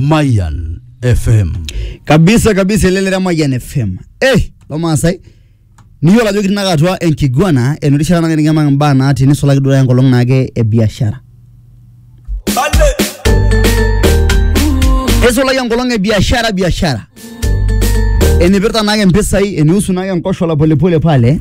Mayan FM. kabisa kabisa elelera mayian fm eh lomaasai niyiolo ajo kitinaka atua enkiguana enotishata nagira nikiamak imbaa natii nisulaki duo enkolong naake e biashara eisulaki enkolong e biashara biashara enipirta naake mpisai enihusu naake enkoshola polepole pale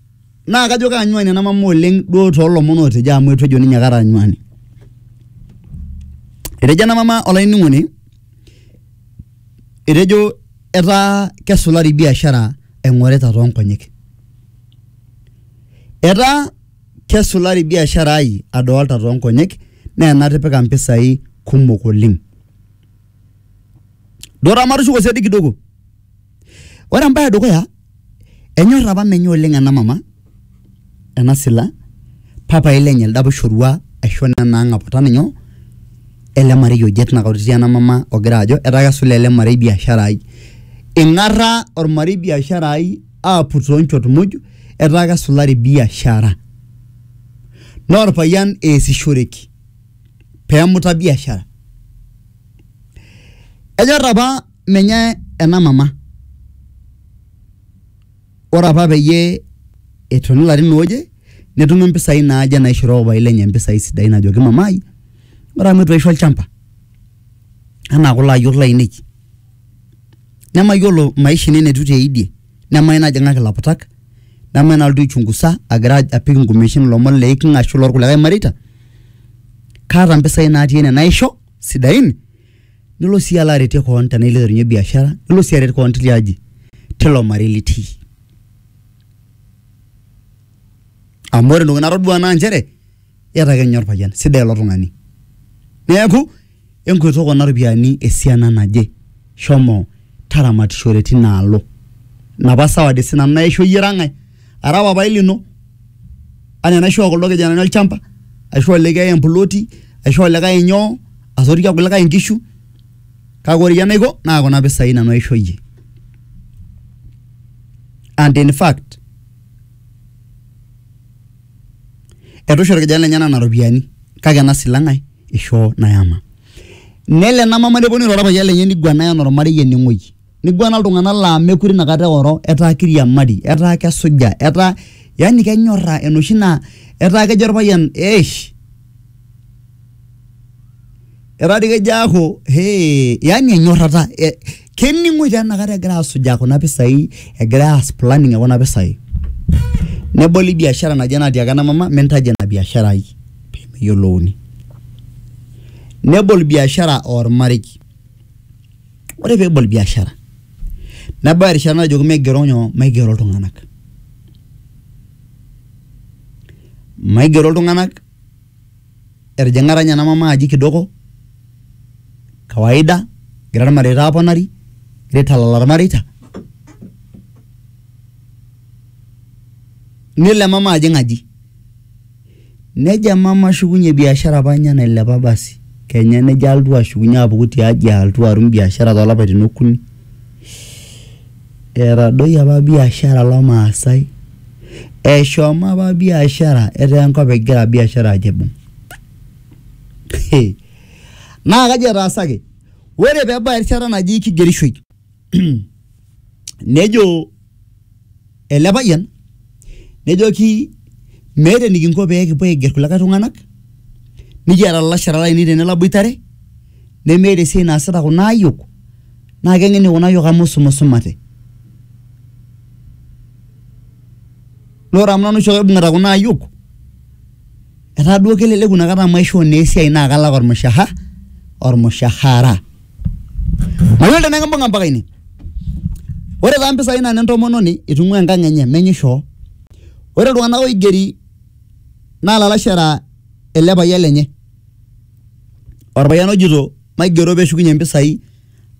naa kajo kaanyuani ena mama oleng duo toolomon ootejo amu eitu ejo ninye kara anyuani. Etejo ena mama olainining'oni, etejo etaa kesulari biashara aing'orita too nkonyek. Etaa kesulari biashara ai adolita too nkonyek naa enatipika mpisai kumok oleng. Duo taa matushuko siadi kidogo Ore embae edukuya enyor apa menye oleng ena mama ena sila papaai lenye elde apa oishorua aisho nena ang'aputan nyoo ele marei oje tina kata etii ena mama ogira ajo etaa kesula ele marei biashara ai. Ing'arra ormarei biashara ai aaput too nchot muj etaa kesulari biashara. Naa orpayian eesishoreki peemuta biashara. Enyor apa menye ena mama ore apa peyie etoni ilarin ooje netumi impisai naaje naishoroo papai lenye impisai sidain ajoki mamai ore amu etu aisho olchamba anaa kulo ayiok lainei nemayiolo maisha ino enetiu teidie nemai najing'aki ilaputak nemai nalotu aichungusa agira apik inkumeshin ilomon leiking'a ashu lorkulikae mareita kaata impisai natii ene naisho sidain. nilo sii alo aretie koon tenaa ilo aiterunyie biashara nilo sii aret koon tilia aji tilo marei litii amu ore entoki natodua naa nchere iyata ake ninye orpayian sidai ilo tung'ani neeku enkwet okuna ropiyiani esiana naje shomo taramatishore tinaalo inapa sawadi sinanu naishoo iyie ira ng'ae ara papai lino. anaa enaishoo kuldo kijanani olchamba aishoo likae emploti aishoo likae inyoo asotie irkulikae inkishu kake ore iyie enaiko naa kuna pisai nanu aisho iyie and in fact etu isho irkijanani lenyena nena ropiyiani kake ena silang ae ishoo nayama nelo ena mama neponu airo orpayian lenye niguanaa enaa ormarei eneng'oi. niguana iltung'anak laa mekure inakata eoro etaa kiriamari etaa kesuja etaa yani kenyorra enoshi naa etaa kejo orpayian eish etaa dii kejo aaku hee yani enyorrata e- kening'oi taa inakata egira asujaa kuna pisai egira aas planning ekuna pisai neboli biashara naje natiaka ena mama mintaji ina biashara ai pemeyiolouni nebol biashara ormarei. ore pebol biashara nebau erishata najoki maigero nyoo maigero iltung'anak maigero iltung'anak etijing'a taa ninye ena mama aji kidogo kawaida egira irmareita aponari egira aitalala irmareita nelo emama ajing aji. Nejo mama ashukunye biashara apa ninye nailepa basi kenya nejo alotu ashukunye apuku tiaji alotu atum biashara tolapaitin okuni. Etadoyie apa biashara olomaasai, eshomo apa biashara etaa enkop egira biashara ajo aibung. Naa kaji etaasaki? Ore pebau erishata naji kigerishoi nejo ele payian nejoki meeta enikinko pekipuo aiger kulikae tunganak nikiata lalashera lainei tene laboitare nemeeta esiai naasita kuna ayiok naa kengeni kuna ayiok amu isumisumate . Naa ore amu nanu oshiake oibungita kuna ayiok etaa duo keleleku inakata amu aishoo naa esiai naa kalak ormushaha ormushahara mayiolo tenaa ekimbung'a mpaka ine ore taa impisai naa nentomononi itung'ua enkang enye menye ishoo ore iltung'anak oigeri naa ilalashera ele payian lenye orpayian ojito maigero peshukunyie impisai.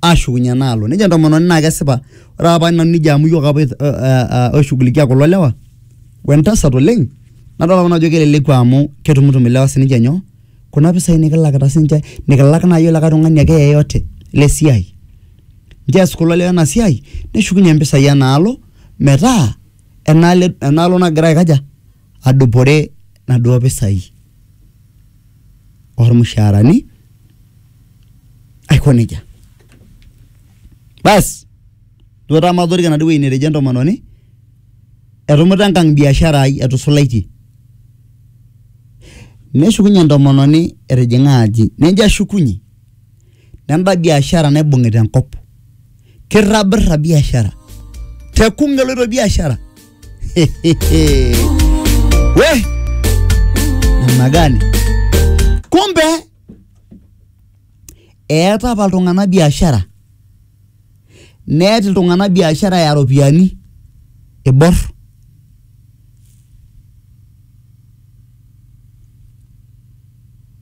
ashukunye enaalo nejo entomononi naa kesipa ore apa paa nanu nejia amu iyiook apa oi- o- a- a- oishugulikia kulo lewa wentasat oleng nadol apa nanu ajo keleleku amu ketumutum ilewa sininche nyoo kuna pisai nikilakita sininche nikilak naaji olikae tung'ani ake yeyote lesiai nchoo ees kulo lewa ena siai neshukunyie impisai enaalo metaa enaalo enaalo nagira aikaja. adupore naduo pisai ormushaarani aiko nejia basi duo taa matoriko enaduo wueji netejo entomononi etumuta enkang biashara ai etusulaitie neshukunye entomononi etijing'a aji nejo ashukunyie. nenda biashara naibung'ita enkop kirrabirra biashara te kunga eloito biashara we namna gani kumbe eeta apa iltung'anak biashara neeta iltung'anak biashara ya ropiyiani iborr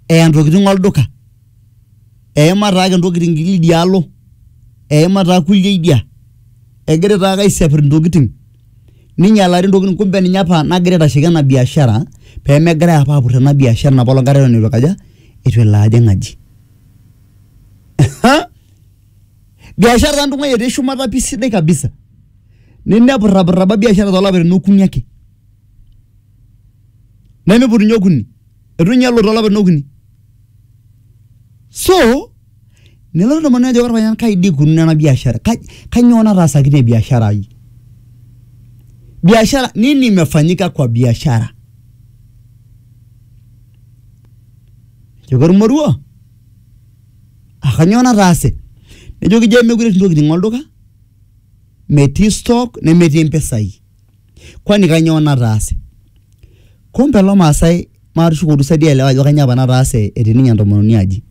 eya ntokitin olduka eima taake ntokitin idia alo, eima taa kulie idia, egira taake aisiapirr intokitin ninyialari intokitin kumbe ninye apa nagira aitashiki ena biashara pee megirai apa aapurr ena biashara ina poolong kata eton itu aikaja, itu elo ajing' aji. Biashara taa ntung'ua etii shumata pii sidai kabisa nemepurrapurra apa biashara too lapaitin okuni ake, nemiiput ninye okuni itu inye elo too lapaitin okuni. so nelo ilo tung'ani ajo orpayian kai dii ikununo ena biashara Kai- kanyoo nataasaki ina biashara ai biashara nini imefanyika kwa biashara joki ormoruo akanyoo nataase nejoki jee mekure etii intokiting olduka metii stock nemetii impisai kwani kanyoo nataase? Kumbe lo Maasai maatushukoki siadi aelewa ajo kanyoo apa nataase etii ninye entomononi aji.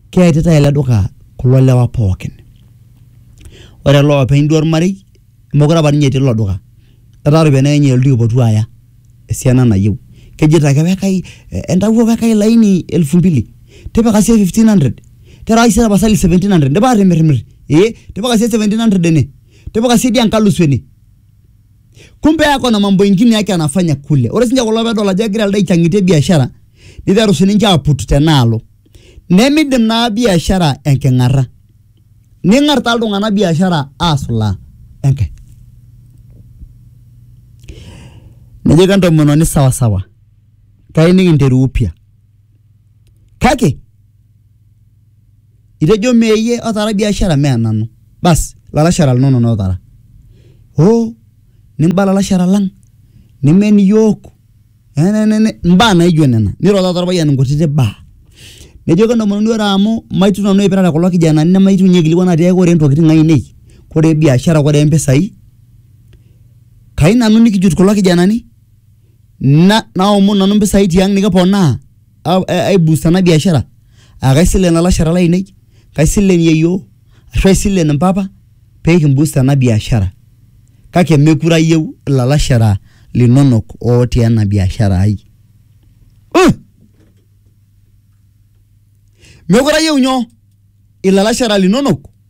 Keetita ele duka kulo lewa pookin. Ore ele openy duo olmarei mokure apa ninye etii ilo duka etaa iropiyiani ake ninye elotu aipotu aya esiana nayieu. Kejito ake wekai entawuo wekai laini elfu mbili, tipika siiyie fifteen hundred, terewaki siiyie tapasali seventeen hundred, indipa atimirmir? Ee, tipika siiyie seventeen hundred ene, tipika siiyie dii enkalusu ene. kumbe yako na mambo ingine yake anafanya kule ore sinche kulo pedol ajo egira elde aichang'itie biashara niteru sininche aput tenaalo nemidim naa biashara enking'arra ning'ar taa iltung'anak biashara asulaa enkae nejoki entomononi sawasawa kai nikinteru upya kake itejo mee iyie otaara biashara mee nanu bas ilalashera linonok otaara hoo niba ilalashera lang nimen iyiook enenene imbaa naijo nena niro taata orpayian inkutiti baa nejo kentomononi ore amu maitu nanu aipirare kulo kijanani nemaitu inye aikilikuan atiaki kore intokitin ainei kore biashara kore impisai kai nanu nikijut kulo kijanani na naomonu nanu impisai tiang nikiponaa. aibustana biashara aa kaisilen ilalashera lainei, kaisilen yieyio ashu aisilen impapa pee kimbust ena biashara kake meekure ayieu ilalashera linonok ootii ena biashara ai. Meekure ayieu ilalashera linonok.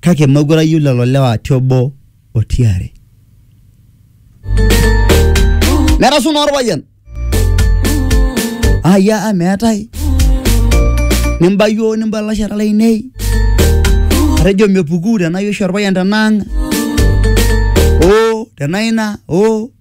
kake mekure ayieu lelo lewa ti obo o tiare. Nerasu naa orpayian aya a meetae nimba yioo nimba lalashera lainei atejo mepuku tenaa iyie oshi orpayian tenaang' oo tenaa ina oo.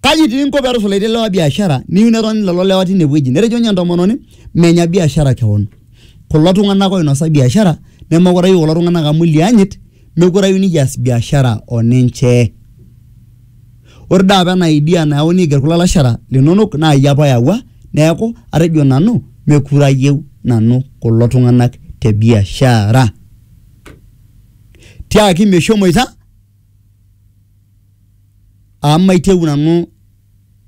Kaji itii inko pee etusulaitie ilewa biashara niyieu netoni lelo lewa teine wueji? Netejo ninye entomononi menya biashara kewon. Kulo tung`anak oinosa biashara nemeekure ayieu kulo tung`anak amu ilianyit meekure ayieu nikias biashara o ninche. Ore doi apa ena idea nayauni aiger kulo lalashera linonok naa iyie apa oyawua niaku atejo nanu meekure ayieu nanu kulo tung`anak te biashara. Tiaki meshomoita. amu maitieu nanu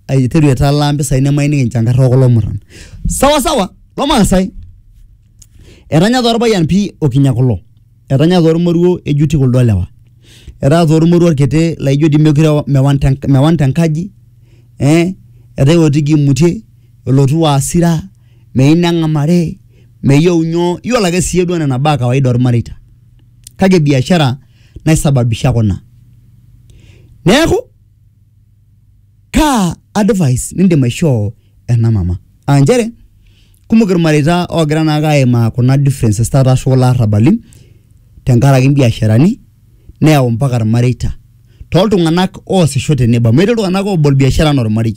aiteru aitalaa mpisai nemaining enchankarr okulo murran sawasawa lomaasai etanya taa orpayian pii okinya kulo etanya taa ormoruo ejuti kuldo lewa etaa taa ormoruo orkiti laijo dii mekure ewa mewan te mewan tenkaji eh etaa ewotiki imutie elotu asira meyieu neng'amari meyieu nyoo yiolo ake siiyie duo nena baa e kawaida ormareita kake biashara. naisababisha kuna neeku kaa advice nindim aishoo ena mama aa nchere kumok irmareita oogira naake aimaa kuna differences taata ashu kulo arrabali tenkaraki imbiasharani neyau mpaka irmareita toltung'anak oosisho tenebo amu etii iltung'anak obol biashara enaa ormarei.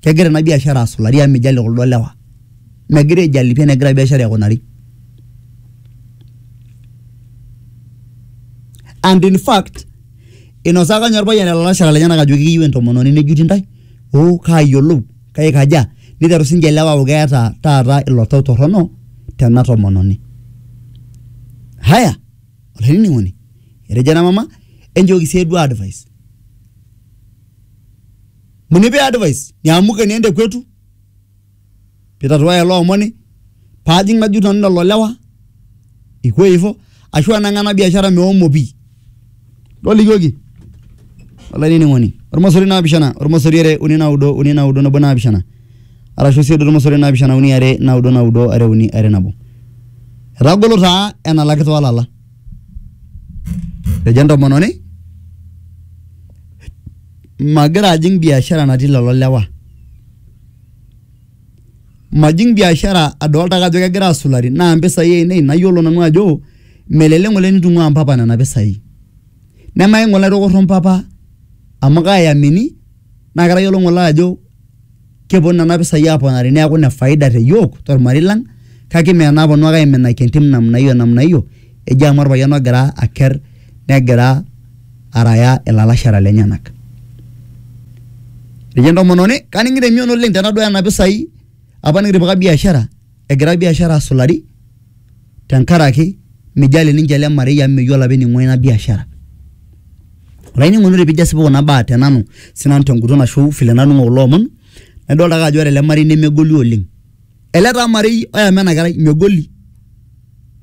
kegira ena biashara asulari amu mijalie kuldo lewa megira aijali pii enegira biashara aikunari and in fact inosaka ninye orpayian ilalashera lenyenak ajo ekiyieu entomononi nejuti intae oh kaayiolou kaikaja niteru sinche ilewa aaku keeta taata ilo tau torrono tena tomononi haya olainining'oni etejo ena mama enchooki siyie duo advice. Munipe advice niamuke niende kwetu pitatuaya ilo omoni paajing najut nanu lelo lewa iko hivyo ashu anang'aa ena biashara meomo pii tolikioki olainining'oni ormosori naapishana ormosori are uni naudo uni naudo nabo naapishana arashu sii duo ormosori naapishana uni are naudo naudo are uni are nabo etagolo taa enalaki toolala ejo entomononi magira ajing biashara natii lelo lewa. Majing biashara adolta ake ajo kegira asulari naa mpisai ainei nayiolo nanu ajo melelek ng'ole nitung'ua mpapa nena pisai. Nemayieu ng'ole aitoki airro mpapa amu kaiamini naa katayiolo ng'ole ajo keponu nena pisai aponari neaku ine faida te iyiook tolmarei lang kake mme enaaponu ake aiminaki entim namna hiyo namna hiyo eji amu olpayian ogira aker negira araya ilalashera lenyenak. Etejo entomononi kaningito emion oleng tenaduaya nena pisai apa nikitipika biashara. egira biashara asulari tenkaraki mijali ninche ele marei amu meyiolo apa ening'ua ina biashara olainining'oni ore pijo asipu kuna baa te nanu sinanu tenguton ashu vile naning'o kulo omon naidolta ake ajo ore ele marei nemegoli oleng ele taa marei oyama ena kerai megoli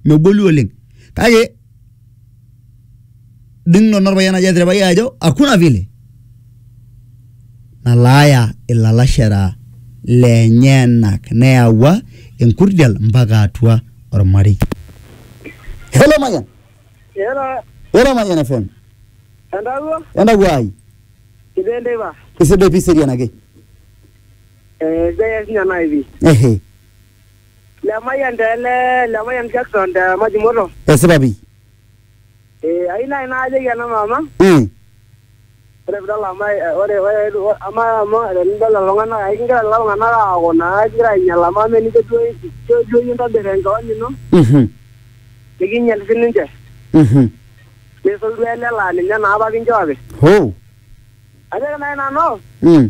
megoli oleng kake. ding nanu orpayian ajo eterepa iyie ajo hakuna vile nalaaya ilalashera lenyenak neyawua enkurdial mpaka atua ormarei hello mayian Ela, hello mayian fm entawuo, entawuo ai sidai enteipa. isidai pi serian ake Eh, sidai ake sinye nai pi. ehe Lemayian te ele Lemayian Jackson te Majimoto. esipa pi Eh, ayieu naaji naajoki ena mama mm. ore pidol amu eh, ore ore ore- ama amu tenidol lelo tung'anak ai kigira lelo tung'anak aaku naa kigira ainyial amu ama enijo duo ijo duo iyie intobir enkeon ino Mhm. nikinyial sininche Mhm. nisul duo ele laa ninye naa apa kinchooki hoo ajoki naaji nanu mm.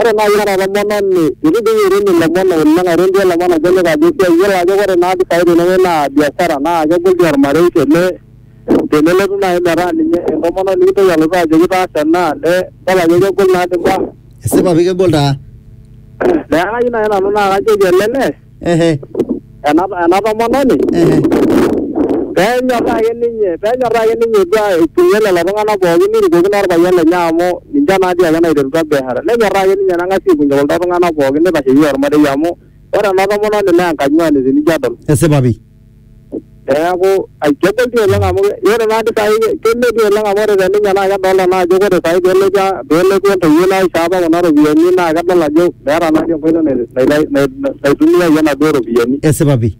Ore nai ira olamanani nidung irem ilomon oleng airem duo ilomon ajo lip ajo esiai iyiolo ajo ore naa mpisai tenewuei naa biashara naa kegol dii ormarei tene tenelotu nai metaa ninye entomononi nikintoki alotu ajoki taasa ena ne idol ajo kegol naadi imbaa esipa pi kegol taa. Neaku kayieu nai nanu naa kajoki ele lee ehe ena ena tomononi ehe peenyorraa ake ninye peenyorraa ake ninye duo aitumia lelo tung'anak pookin nirukokino orpayian lenye amu ninche naa dii ake naiterutua biashara nenyorraa ake ninye neng'asi aikunye kuldo tung'anak pookin nitasheyie ormarei amu ore ena tomononi naa enkanyuani tenijo adol esipa pi Neeku kegol dii oleng amu ore naa dii saai keme dii oleng amu ore te ninye naa kedolta naa ajo ore saai pelotu a- pelotu entoiwuoi naisho apa kuna ropiyiani naa kedol ajo meeta naa dii enkoitoi nai- nai- nai- naitumiayie naduo ropiyiani. esipa pi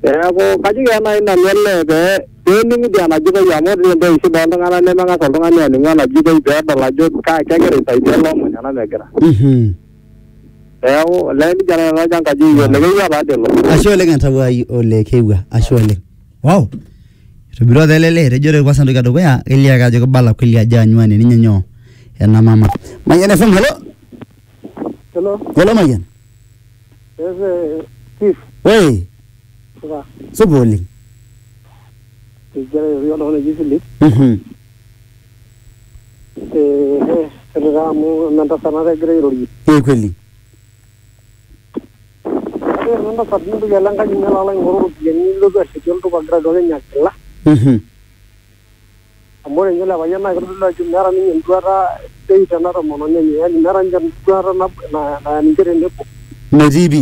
Neeku kajoki ake nai nanu olee pee pening'u dii enajitoi amu ore dii entoki shida oltung'anak nemeng'as oltung'ani aning'u enajitoi pedol ajo ka kegira aisaidia ele omoni ena megira. mhm Neeku olee nija nanu ajo enkaji eyiolo ekeyieu apa ade ilo. ashe oleng entawuai ole keewua ashe oleng wow etobirua apa ele lee etejo ore kwanza entoki edukuya kelio ake ajo kibala kweli ajo anyuani ninye nyoo ena mama Mayian FM hello Hello, hello Mayian yes, eh, Steve, woi supa. supa oleng Egira airori oltung'ani oji Philip. Mhm. Ehe, ore taa amu eme entasat naata egira airorie. Ee kweli. Ore ena tasat nintoki alo enkaji ino alo aing'oru iropiyiani nilotu ashetie oltupa igira aduaki ninye enkila. Mhm. Amu ore ninye ele payian naa kitodolu ajo meeta ninye enduata sidai tena tomononi enye. Yani meeta ninye enduata naya ninche tenebo. Metii pi.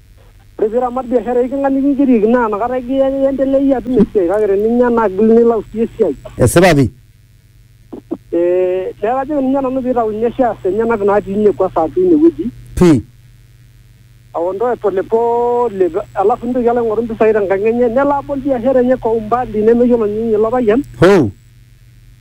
Ore pee iramat biashara e iking'a nikingerik naa inakata iendelea iyie atum esiai kake teninya naa kegil nilau sii esiai. Esipa pi? Ee neeku kajoki ninye nanu pee itau ninye shares enyenak natii ine kwanza atua ine wueji. Pi? Aondoe pole pole alafu nitoki alo aing'oru mpisai tenkang' enye nelo abol biashara enye kwa umbali nemeyiolo ninye ilo payian. Hoo!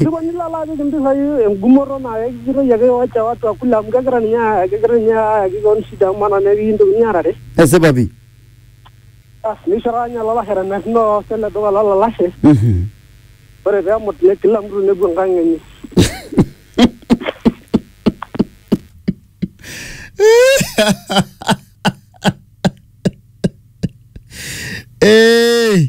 Ndiko nilala apik impisai engumoto naa kekijitoi ake wacha watu akula amu kegira ninye aa- kegira ninye ayaki keon shida amu maana naa pikintokini aarare. Esipa pi. Basi neisho taata ninye olalashera emerino oosita ele duka lolalashe. Mhm. Ore pemut ne kila mtu nepuo enkang enye. Ee.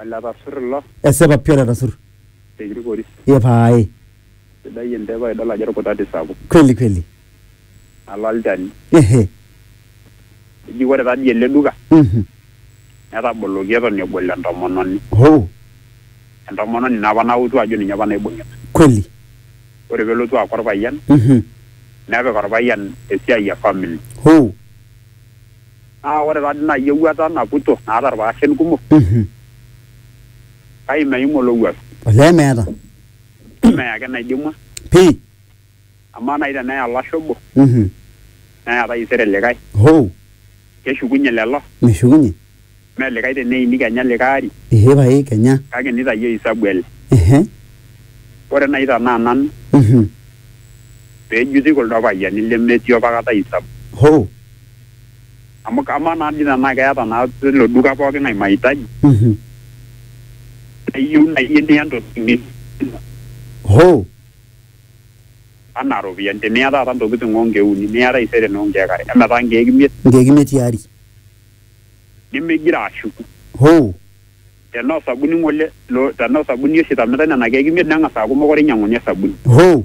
Oletasur ilo. Esipa pi oletasur. Te kirikori. Ee pae. Sidai entepa idol ajo olkutati sapuk. Kweli kweli. Nalo olchani. Ehe. Eji ore tadii ele duka. Mhm. Netaboloki eton ebol entomononi. Hoo. Entomononi ina apa nautu ajo ninye apa naibungita. Kweli. Ore pelotu aaku olpayian. Mhm. Nepik olpayian esiai e family. Hoo. Naa ore taadi naaji ewuata naputo naata ilpaashen kumok Mhm. kake meim olowuaru. Olee meeta. Mme ake enaidimua. Pii. Amaa naaji teneya olashe obo Mhm. neya taisere likae. Hoo. Keshukunye lelo? Meshukunye. Mme likae teneini kenya likae ari. Ee pae kenya. Kake nitayio hisabu ele. Ehe. Ore naaji tenaa nanu Mhm. pee ejuti kuldo payiani lemetii opakata hisabu. Hoo. amu kamaa naa dii tenaa keeta naa ilo duka pookin ai mahitaji Mhm. neyieu naaji niya intokitin ni- Hoo. anaa iropiyiani teniya taata intokitin onkeek uni niya taisere noo nkeek are emetaa nkeek imiet Nkeek imiet tiari. nimigira ashuku Hoo. tenaa osabuni ng'ole lo tenaa osabuni oshi itamitai nena keek imiet neng'as aaku mokure inyiang'uni osabuni Hoo.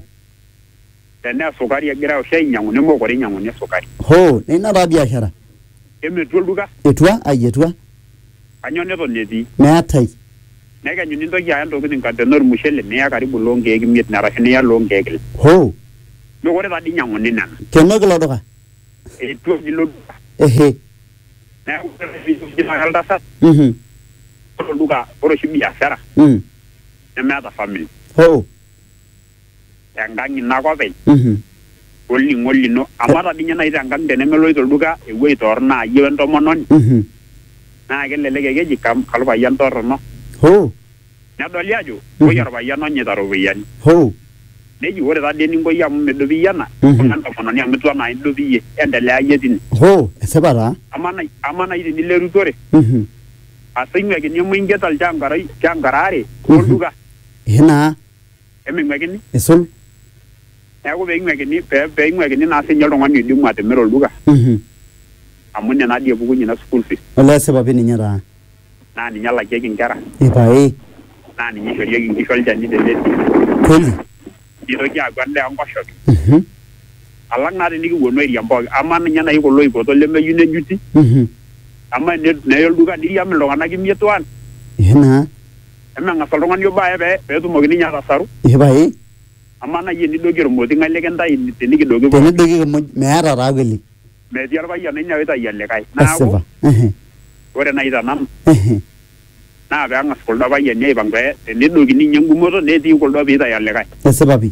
Tenaa esukari egira oshi ainyiang'u nemeekure einyiang'uni esukari. Hoo, neina taa biashara. Eme etua olduka. Etua? Ai etua. Kanyoo neton etii? Meetae. Nekenyu nintoki aya intokitin kake tenaa olmushele niya karibu iloo nkeek imiet ine arashu niya iloo nkeek ile. Hoo. Meekure taa dii einyiang'uni nena. Kenoki ilo duka. Etua oshi ilo duka. Ehe. Neaku ore ake pee ijo taata oltasat. Uhum. Ore olduka, ore oshi biashara. Uhum. Nemeeta famili. Hoo. enkang ino ake openy Mhm. olning'o lino amu ata dii ninye naaji tenkang tenemeloito olduka ewueji torrono aa iyie wentomononi Mhm. naa kelelek ake eji kam kalpayian torrono Hoo. nedoli ajo koi orpayian onyaita iropiyiani Hoo. neji ore tadii eninko iyie amu midup iyie ena Mhm. imbung'a entomononi amu itu enaa idup iyie endelea iyie tine Hoo. Esipa taa. amaa nai- amaa naaji tinilo erutore Mhm. asing'uakini emu ingerita ilchankara ilchankara aare Mhm. olduka Ehe naa. eming'uekini. Eisul. Neaku peing'uekini, peing'uekini naa sinye oltung'ani oidimu atimira olduka. Amu ine naa dii epukunye ina school fees. Olee esipa pi ninye taa. Naa ninye elakieki inkera. Epae. Naa ninye eishorieki inkishu olchani te lelki. Kweli. Neitoki aaku endaa enkoshoke. Alang naa tinikipuonu airiam pooki. Amaa ninye nai kulo oipoto lemeyieu nejuti. Amaa neye olduka neiriam iltung'ana imiet one. Ehe naa. Emeng'as oltung'ani obo aye pee pee etumoki ninye atasaru, Ee pae amaa naaji enidoiki ormoti ng'ae likintayu tenikidoiki pooki? tenidoiki kimuj meeta taa kweli. Metii orpayian oinyia oitayu olikae. Neeku Esipa. Ehe, ore naaji te nanu ehe. naa pee eng'as kuldo payiani aipang pee tenedokini ninye engumoto netii kuldo pee eitayu olikae. Esipa pi.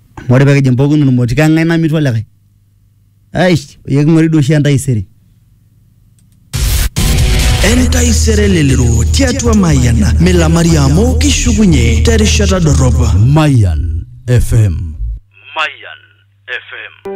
Amu ore pee kijing' pooki ilmoti kang'ai namitu olikae? Eish eking'uari doi oshi entaisere. Entaisere elelero tiatua Mayian milamari amu kishukunye terishata dorrop. Mayian FM. Mayian FM.